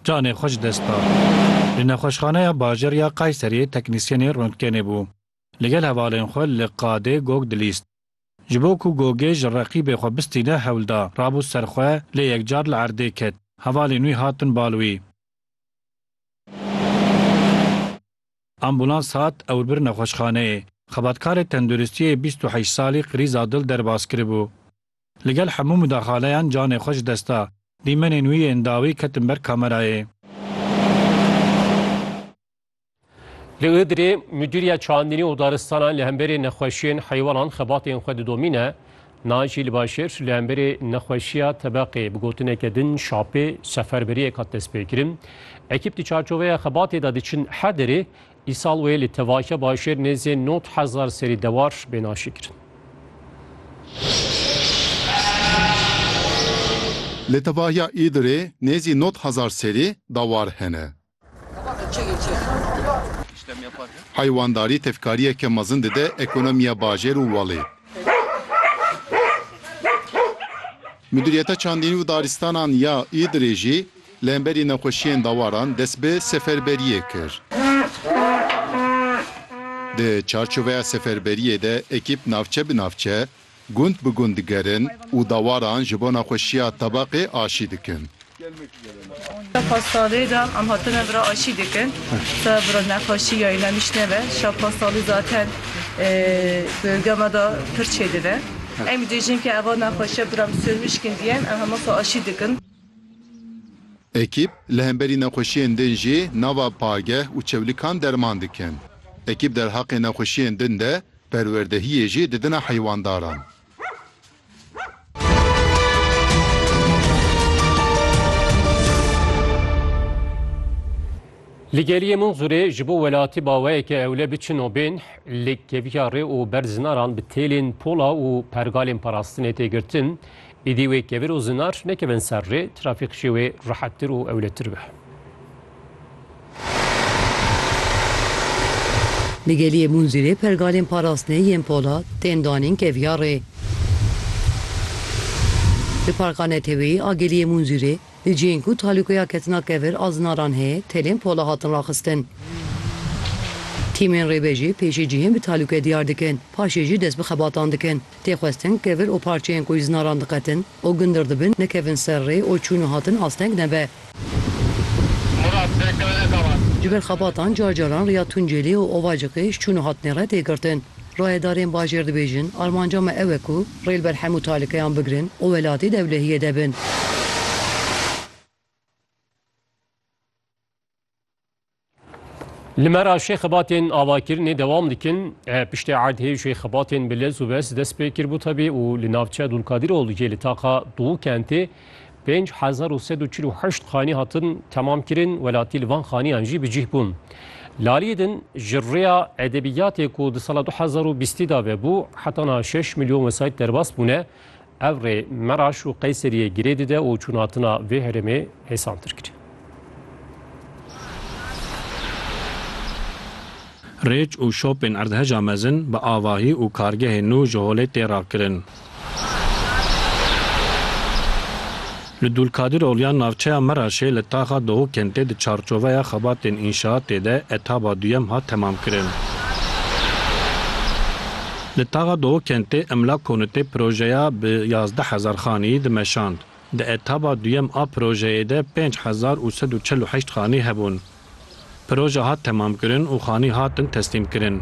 Canê xwe ji dest da. Li Nexweşxaneya Bajêr ya Kayseriyê teknîsyenê rontgenê bû. Li gel hevalên xwe li qadê gog dilîst. Ji bo ku gogê ji reqîbê xwe bistîne hewl da, rabû ser xwe lê yekcar li erdê ket. Hevalên wî hatin bal wî. Ambûlans hat ewr bir nexweşxaneyê. Xebatkarê tenduristiyê bîst û heşt salî krîza dil derbas kiribû. Li gel hemû mudaxaleyan canê xwe ji dest da. Dîmenên wî yên dawî ketin ber kamerayê. Li Iğdırê Müdür ya Çandinî û Daristanan li hemberê nexweşiyên heywanan xebatên xwe didomîne. Naci li Başêr li hemberê nexweşiya tebeqê bi gotineke din şapê seferberiyek hat destpêkirin. Ekîp di çarçoveya xebatê de diçin her derê Îsal wê li tevahiya bajêr nêzê nod hezar serî dewar bên aşîkirin. Li tevahiya Îdirê nêzî nod hezar serî dewar hene. Heywandarî tevkariyeke mezin dide ekonomiya bajêr û welê. Midûriyeta Çandînî û Daristanan ya Îdirê jî Li hemberî nexweşiyên dawaran dest bi seferberiyê kir. Di çarçoveya seferberiyê de ekîp navçe bi navçe, gund bi gund digerin û dawaran ji bo nexweşiya tabaqê aşî dikin. Di pasalê de em hatine vira aşî dikin. Te vira nexweşî ya înan îş nebe. Şa pasalî zaten di gama de pir çêdibe. Em bêjin ke eva nexweşiya bi re em sor mişkîndiyên, em hema sal aşî dikin. Ekîp li hemberî nexweşiyên din jî nava pageh û çewlikan derman dikin. Ekîp derheqê nexweşiyên din de perwerdehiyê jî didine heywandaran. Li geliyê Munzurê ji bo welatî baweyeke ewle biçin û bên, li keviya rê û ber zinaran bi têlên pola û pergalên parastinê tê girtin, Êdî wê kevir û zinar nekevin ser rê, trafîk jî wê rehettir û ewletir be. Li Geliyê Munzîrê pergalên parastinê yên polat tên danîn kevyarê. Li Parka Neteweyî a Geliyê Munzîrê di cihên ku talûkeya ketina kevir a zinaran heye telên pola hatin raxistin. Tîmên rêvejê pêşî cihên bi talûke diyar dikin, paşê jî dest bi xebatan dikin. Tê xwestin kevir û parçeyên ku îznaran diqetin û gundir dibin nekevin ser rê û çûn û hatin asteng nebe. Ji ber xebatan car caran riya Tuncêlî û Ovacikê ji çûn û hatinê re tê girtin. Rayedarên bajêr dibêjin, Armanca me ew e ku rê li ber hemû talikeyan bigirin û welatî dewlehiyê de bin. Li me re şêxebatên avakirinê dewam dikin. E, piştê erdhê şêxebatên bi lez û bes dest pê kiribû tevî û li navçeya Dulkadirol jê li taxa Dûkentê 5148 xanî hatin temam kirin, welatî li van xaniyan jî bi cih bûn. Laliyê din ji rêya edebiyatê ku di sala 2020 da vebû hetana 6 milyon wesayît derbas bûne, Ev rê Meraş û Qeyseriyê girê dide û çûnhatina vê herêmê hêsantir kir. Rêç û şopên erdheja mezin bi avahî û kargehên nû ji holê tê rakirin. Li Dulkadir Olyan navçeya Meraşê li taxa Dohu Kentê di çarçoveya xebatên înşaatê de etaba duyem hat temamkirin. Li taxa Dohu Kentê Emlak Konutê projeya bi yazdeh hezar xaneyî dimeşand. Di etaba duyem a projeyê de pênc hezar û sed û çel û heşt xanî hebûn. Proje hat temamkirin û xanî hatin teslîmkirin.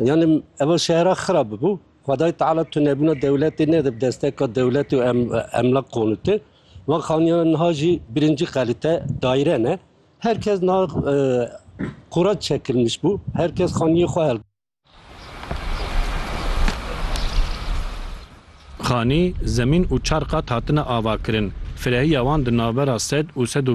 Yani ev şehra xira bibû. Xwedayê Teala tunebûna dewletê nede bi desteka dewletê û emlak qonûtê. Van xaniyana niha jî birincî qelîte daîre ne. Her kes niha e, qurac çekilmiş bû. Her kes xaniyê xwe hel Xanî, zemîn û çar qat hatine avakirin. Firehiya wan di navbera sed û sed û